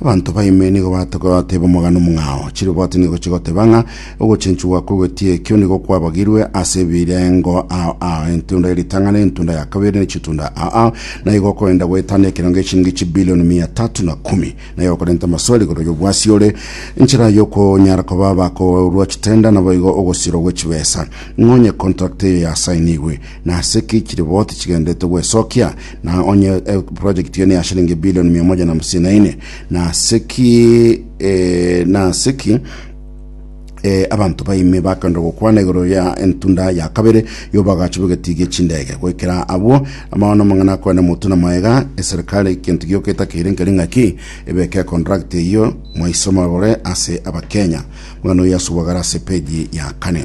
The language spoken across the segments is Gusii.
Abanto ba ime nigo batoka goteba omogano omong'ao. Chiroboti nigo chigoteba ng'a ogochenchigwa kw'egotia ekio nigo kwabagirwe ase ebirengo ao ao, entunda ye ritang'ani, entunda ya kabere, ne chitunda ao ao, na igo okoenda goetana ekero ng'echiringi chibilioni mia tatu na kumi. Na igo okorenta amaswali igoro y'obwasi ore nchera y'okonyara koba abakoorwa chitenda, naboigo ogosirwa gwe chibesa ng'a onye contract eye yasainigwe. Na ase ki chiriboti chigenderete gwesokia, na onye eh, project eye ne ya shilingi bilioni mia moja na hamsini na ine, na ase ki eh, na ase ki eh, abanto baime bakenda gokwana igoro ya entunda ya kabere y'obagacho bw'egetiigi echindege goikera abwo amaono amang'ana akwane motu na maega eserikali kintu gioka etakeire nkeri ng'aki ebeke contract eyio mwaisoma bore ase abakenya mwana oyo asubagara ase peji ya kane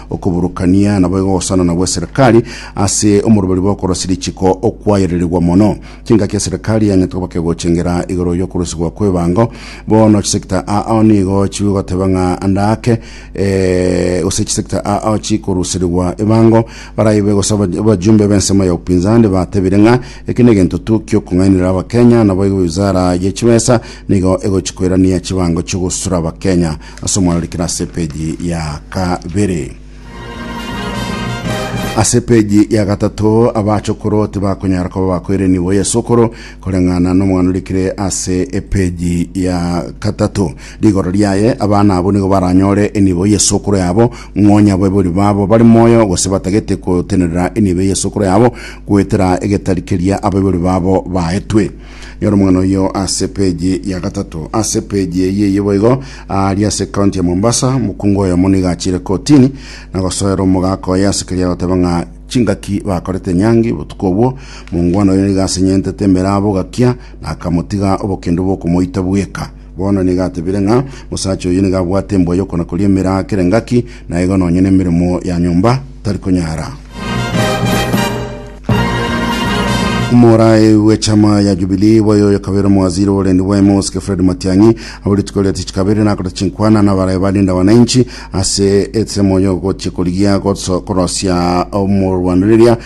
Okoburukania naboigo ogosanana gw'eserekari ase omoroberi bw'okorosia richiko okwayereregwa mono. Chingaki eserekari yang'ete koba kegochengera igoro y'okorusigwa kw'ebango. Bono chisecta aao nigo chigoteba ng'a ande ake eh, gose chisecta aao chikoruserigwa ebango. Baraibe gose aba- abajumbe b'ensemo ya upinzani batebire ng'a eke negento tu kiokong'ainereria abakenya naboigo wizara ye chibesa nigo egochikoirania chibango chi'ogosura abakenya ase omwarorikere ase epeji ya kabere. Ase epeji ya gatato abachokoro tibakonyara koba bakoirenigwa Yesu okoro koreng'ana n'omwana orikire ase epeji ya gatato. Rigoro riaye abana abo nigo baranyore enibo Yesu okoro yabo, ng'onya abaibori babo bare moyo gose batagete gotenerera enibo Yesu okoro yabo goetera egetari keria abaibori babo baetwe. Nyora omong'ina oyio ase page ya gatato. Ase page eye eyio boigo, aaria ase county ya Mombasa, mokungu oyomo nigo achiire kotini na gosoera omogaka oye ase keria agoteba ng'a chingaki bakorete Nyangi botuko obwo. Mongwana oyo nigo asenyentete emeraba ogakia na akamotiga obokendo bw'okomoita bweka. Bono nigo atebire ng'a mosacha oyio nigo abwate embwa y'okona koria emeraa kera engaki, na igo nonye nemeremo ya nyomba tari konyara. Omorai w'echama ya Jubilee boye oyokabere omowaziri oborendi bwaime obosike Fred Matiang'i abo rituko ria tich kabere nakorete chinkwana nabarae barinda wananchi ase ensemo y'ogochia korigia goso- korosia omorwanireria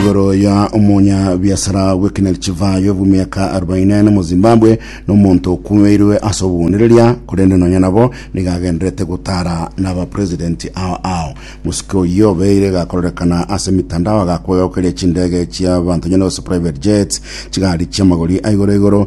igoro ya omonya biasara bw'ekinari chivayo bw'emiaka arobaini ane mu zimbabwe n'omonto okumeirwe ase obogonereria korende nonya nabo nigagenderete gotara n'abapresidenti ao ao mosike oyio obeire gakororekana ase emitandao agakwegaukeria chindege chiabanto nyene gose private jets chigari chiamagori aigoro igoro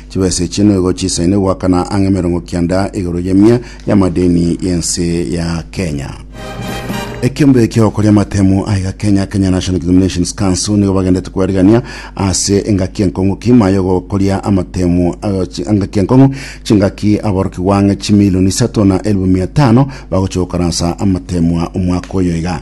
Chibesa echi noigo chisaine goakana ang'e emerongo kianda igoro y'emia y'amadeni y'ense ya Kenya. Ekiombe kia okoria amatemu aiga Kenya, Kenya National Examinations Council, nigo bagendete kwerigania ase engaki enkong'u kima yogokoria amatemu eh, chi- engaki enkong'u chingaki aboroki gwang'e chimilioni isato na elifu mia tano bagochia gokaransa amatemwa omwaka oyo iga.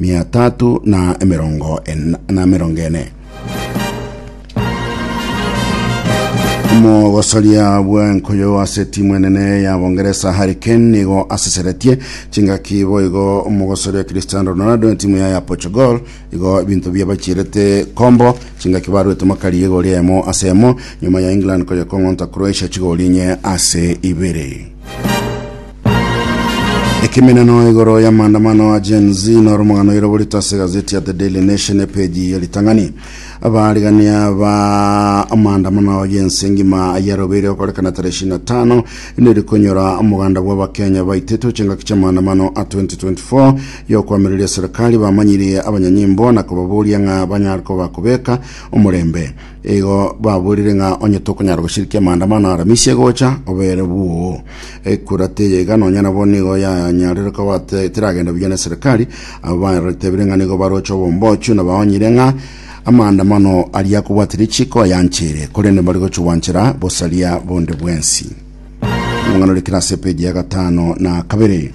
mia tatu na emerongo ena- na emerongo ene. omogosoria bw'enkuyu ase timu enene ya bongeresa harry kane nigo aseseretie chingaki boigo omogosoria cristiano ronaldo etimu yaye ya portugal igo ebinto biabachirete kombo chingaki barwete makari y'egori eyemo ase eyemo nyuma ya england koyekong'onta croatia chigori inye ase ibere Ekemeneno igoro ya maandamano a Gen Z noro omogano oire oborito ase egazeti ya The Daily Nation epeji ya ritang'ani. Abarigania ba amaandamano ayio ense engima ayarobeire okorekana tarehe ishirini na tano neri konyora omoganda bwa abakenya baitete ochengaki chia amaandamano a 2024 ya okoamereria serikali bamanyirie abanyanyimbo na kobaboria ng'a banyare koba kobeka omorembe. Igo baborire ng'a onye tokonyara goshirikia maandamano a Aramisi egocha, obere bwoo. Ekura teye iga nonya nabo nigo yanyarire koba te- teragenda buya na eserekari. Abo batebire ng'a nigo baroche obombochu na baonyire ng'a amaandamano aria akobwate richiko ayanchire, korende mbari gochugwanchera bosaria bonde bwensi. Amang'ana rikira ase epeji ya gatano na kabere.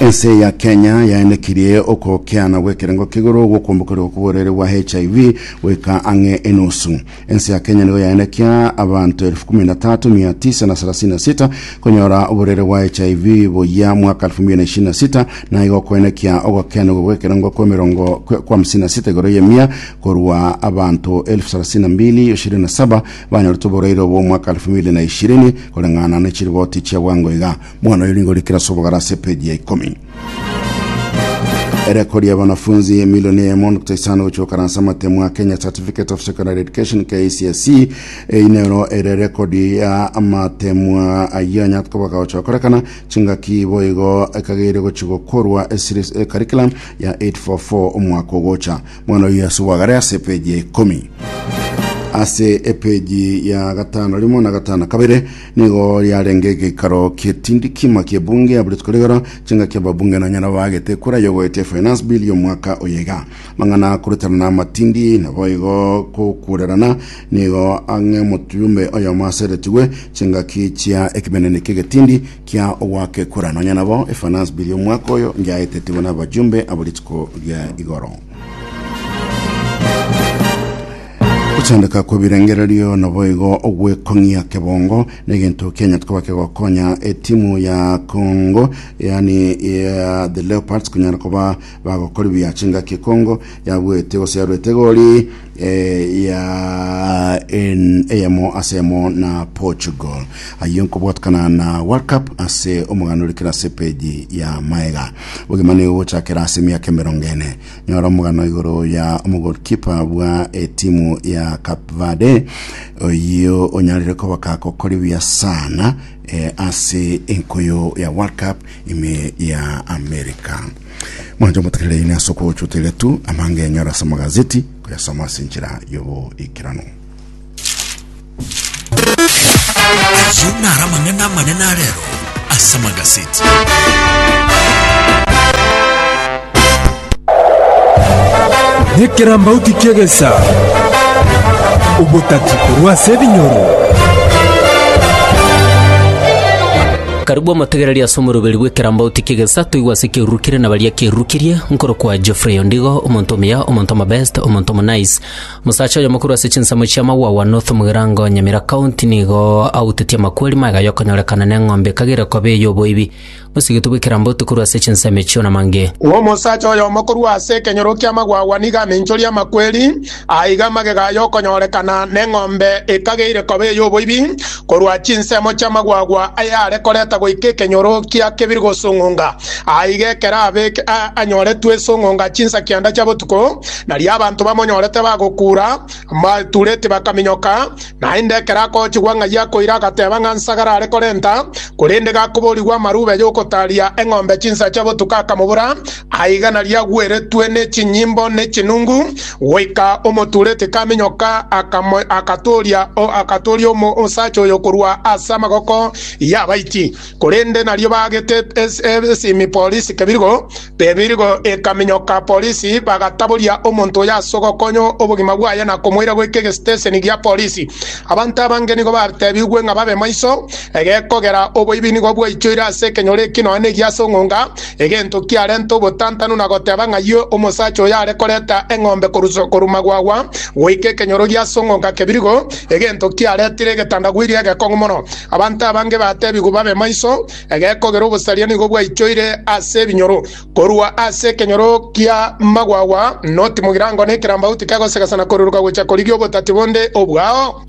Ense ya Kenya yaenekirie okokeana gw'ekerengo k'igoro gw'okombokerwa kw'oborwaire bwa HIV goika ang'e enusu. Ense ya Kenya nigo yaenekia abanto elfu kumi na tatu mia tisa na sarasini na sita konyora oborwaire bwa HIV boyia mwaka elfu mbili na ishirini na sita na igo koenekia ogokeanerwa gw'ekerengo kw'emerongo kwa hamsini na sita igoro y'emia korwa abanto elfu sarasini na mbili ishirini na saba Banyorete oboraire obo omwaka elfu ibere na ishirini koreng'ana ne chiriboti chia bwango iga. Mwana oyo nigo orikire ase obogare ase epeji ya ikomi. Erekori y'abanafunzi emilioni eyemo nokta isano gochia gokana ase amatemo a Kenya Certificate of Secondary Education KCSE. Eyi nero ere erekodi ya amatemo ayio anyarete koba gagocha gokorekana chingaki boigo ekageiria gochia gokorwa ecurriculum ya 844 omwaka ogocha. Omwana o Yesu bwagare ase epeji ya ikomi ase epeji ya gatano rimo na gatano kabere nigo riarenge egeikaro kietindi kima kiebunge ya buri tukorigoro chingaki ababunge nonya nabo bagete ekura yogoetia finance bill y'omwaka oyega mang'ana kuruterana amatindi nabo igo kokurerana nigo ang'e omotuyume oyomo aseretigwe chingaki chia ekimenene kiegetindi Kia ogwakekura nonya nabo efanasi biri omwaka oyo ngiaetetigwe n'abajumbe abo rituko ria igoro. Gotendeka kw'ebirengererio naboigo ogwekong'ia kebongo n'egento kianyete koba kegokonya etimu ya Congo yani ya the Leopards konyara koba bagokora ebiya chingaki Congo yabuete gose yarwete egori eh, ya en- eyemo ase eyemo na portugal ayio nkobwatekana na world cup ase omogano orekera ase peji ya maega ogima nigo gochakera ase emiaka emerongo ene nyora omogano igoro ya omogolkipa bwa etimu ya cape verde oyio onyarire kobaka kokori buya sana eh, ase enkoyo ya world cup ime ya america Mwanche omotekerere ine ase okochuteria tu amanga enyora ase amagazeti koyasoma ase enchera y'oboikeranu. Ayio naro amang'ana amanene arero ase amagazeti. Nekerambauti kiegesa obotati korwa ase ebinyoro. Akarigwa omotegereria ase omoroberi bw'ekerambauti ki'egesato igwa ase ekerurukire na baria ekerurukirie, nkorokwa Geoffrey Ondigo, omonto omuya, omonto omobest, omonto omonice. Omosacha oyomo korwa ase chinsemo chia Mawawa North Mugirango, Nyamira County, nigo autetie amakweri magaya y'okonyorekana neng'ombe ekagere koba ey'oboibi, mosigete bw'ekerambauti korwa ase chinsemo echio namange. Omosacha oyomo korwa ase ekenyoro kia Mawawa nigo amenchorie amakweri, Aiga amagega aya okonyorekana neng'ombe ekageire koba ey'oboibi, korwa chinsemo chi'amagwagwa ayare koreta goika ekenyoro kia kebiri gosung'unga. Aiga ekero abeke aa anyoretwe esung'unga chinsa kianda chia botuko, nario abanto bamonyorete bagokuura, batureti bakaminyoka, naende ekero akochigwa ng'ai akoira agateba ng'a nsagara are korenta, korende gakoborigwa amarube y'ogotaria eng'ombe chinsa chia botuko akamobura, Aiga nariagweretwe ne chinyimbo ne chinungu, goika omotureti kaminyoka agatooria agatooria omosacha oyo korwa ase amagoko y'abaiti, korende nario baagete esimi polisi kebirgo, ebirgo ekaminyoka polisi bagataboria omonto oyo ase ogokonya obogima bwaye na komoira goika egesiteseni gia polisi. Abanto abange nigo batebigwe ng'a babe maiso, egekogera oboibi nigo bwaichoire ase ekenyoro eki nonya negiase ong'onga, Egento kiarenta obotantanu na goteba ng'ayio omosacha oyo are koreta eng'ombe korwa magwagwa goika ekenyoro giasong'onka kebirigo, egento kiaretire egetandagwiri egekong'u mono. Abanto abange batebigwe babe maiso, egekogera obosaria nigo bwaichoire ase ebinyoro. Korwa ase ekenyoro gia magwagwa noti mogirango na ekerambauti kegosegesa na koruruka gocha korigia obotati bonde obwao.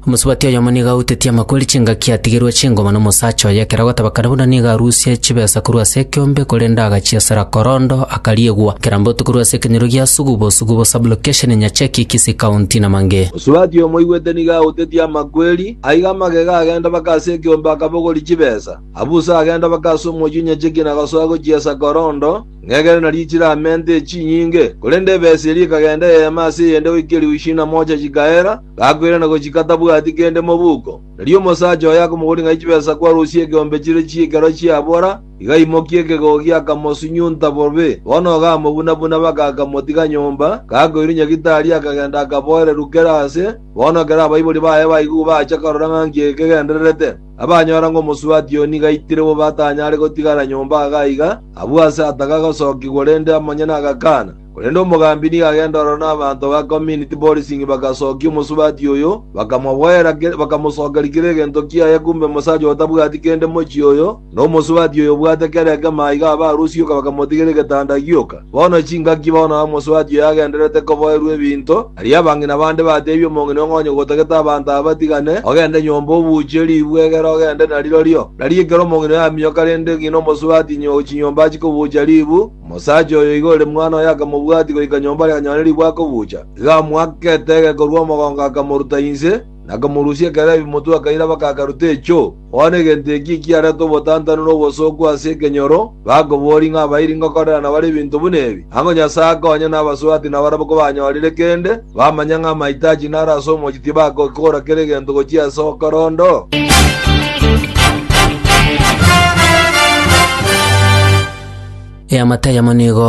Omosubati oyomo nigo autetie amakori chingaki atigerwe chingoma nomosacha oye ekero agotebeka na buna nigo arusie chibesa korwa ase ekeombe korende agachiesera korondo akariegwa kera mbotu korwa ase ekenyoro gia Sugubo, Sugubo Sub-location, Nyacheki, Kisii County na Mange. Omosubati oyomoigwete nigo autetie amakweri, aiga amagega agenda mpaka ase ekeombe akabogoria chibesa, abusa agenda mpaka ase omochie o Nyacheki na agasoa gochiesa korondo, ng'egere nario chire amente echinyinge, korende ebesa eria ekagenda eyemo ase eyende goika eribu ishirini na mocha chikaera, gakwera na gochika tabwati kende mobuko. Erio omosacha oye akomogori ng'a chibesa kwarusia egeombe chire chi'ekero chiabora, igaimokia ekegogi akamosunyunta bobe. Bono ogamobuna-buna mpaka akamotiga nyomba, gakoirwa nyagitari akagenda akaboereru kera aase, bono ekero abaibori baye baigwe bacha korora ng'a nki ekegendererete. Abanyora ng'a omosubati oyo nigo aitire bobe atanyare gotigara nyomba agaiga, abwo aase atagaga gosokigwa rende amanyene agakana. Korende omogambi nigo agenda ororo nabaanto ba Community Policing bagasookia omosubati oyo, bakamoboera bakamosokeria kera egento kiaye kumbe omosacha oyo tabwati kende mochie oyo, na omosubati oyo obwate kera ekemo aiga abe arusioka bakamotigera egetanda agioka. Bono chingaki bono aa omosubati oyo agendererete koboerwa ebinto, aria abang'ina bande bateebia omong'ina ong'onye gotagete abanto aba batigane, ogende nyomba obuuche ribu egere ogende narirorio. Nari ekero omong'ina oyo aminyoka rende ng'ina omosubati chinyomba achikobuucha ribu, Omosacha oyo iga ore mwana oye akamobwatia goika nyomba aria anyore ribwe akobucha. Igo amoake etege korwa omogongo akamoruta inse, na akamorusia ekero ebimotwe akairaba kagaruta echo. Bono egento eki ekiarete obotantanu na obosooku ase ekenyoro, bakoboria ng'a abairi ngokorerana bare ebinto buna ebi? Ango Nyasae akonye nabaswaati nabarabwo kobanyorire kende? bamanya ng'a amahitaji naro ase omochie tibagokora kera egento gochia ase okorondo? Eamate eyemo nigo